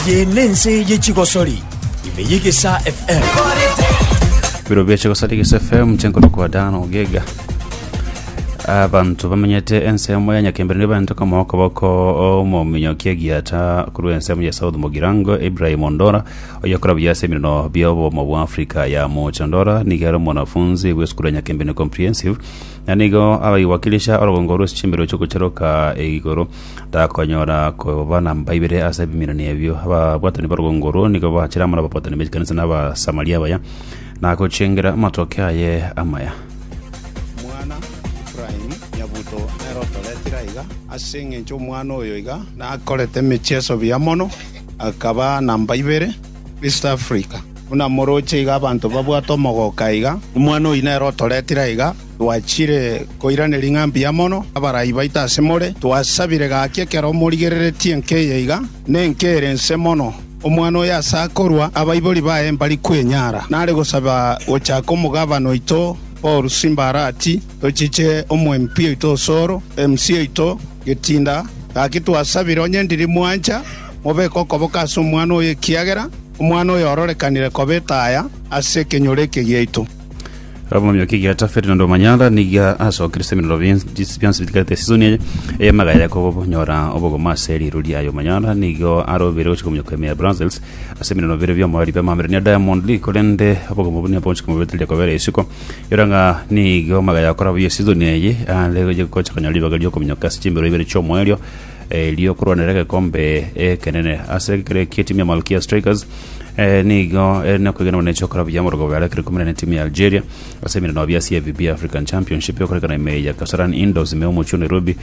Eye nense ye chigosori ime yegesa FM. biro bia chigosari gese fm chenkoro kwa dan ogega abanto bamenyete ensemo ya nyakembere nibanto kama okoboko omominyoki egiata korwa ensemo ya south mogirango ibrahim ondora Oyokora buya ase emerino bi'obomo bwa Africa ya Mocho Ndora nigo ere omwanafunzi bw'esukuru ya Nyakembene Comprehensive, na nigo agaiwakilisha orogongo rw'ense chimbero chi'ogocheroka igoro. Takonyora koba namba ibere ase ebiminani ebio. Ababwatani b'orogongo orwo nigo bachire amo nababwatani b'echikanisa na abasamari abaya, na gochengera amatoke aye amaya. Omwana Efraim Nyabuto nere otoretire aiga, ase engencho omwana oyo iga nakorete emechieso buya mono. Akaba namba ibere East Africa. Buna moroche iga abanto babwate omogoka aiga, nomwana oyio nere otoretire aiga. Twachire koiraneria ng'a mbuya mono abarai baito ase more. Twasabire gaki ekero morigereretie enka eye iga, na enka ere ense mono. Omwana oyo ase akorua, abaibori baye mbari kwenyara. Nare gosaba gochaka omogavana oito Paul Simbarati, tochiche omwemp oito Osoro, MC oito, Getinda, gaki twasabire onye ndiri mwancha, mobeke okoboko ase omwana oyo, ekiagera omwana oyo ororekanire koba etaya ase ekenyoro eke giaito. Abamanywa kigiata Ferdinand Omanyala niga asokerete ebinoro binsi- bionsi bitigarete esisoni eye ey'amaga ya Yakobo bonyora obogomo ase riiru riaye. Omanyala nigo arobire gochia kominyoka ime ya Brussels ase ebinoro bire bi'omoreri bw'amaambero ne Diamond League korende obogomo buna bonsi komobeteria kobera isiko Era ng'a nigo magaya akora buya esizoni eye, aande gocha gocha konyora ribaga riokominyoka ase chimbero ibere chi'omoerio eh, riokorwanera egekombe ekenene. Ase ekero eki etimu ya Malkia Strikers eh, nigo ere nokwegena buna echokora buya amorogo abo yarakire komerana na etimu ya Algeria ase emereno abia ase FBB African Championship ekorekana ime ya Kasarani Indoors ime y'omochie o Nairobi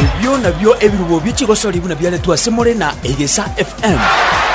Ebio nabio ebirubo bie chigosori buna biaretwe ase more na Egesa FM.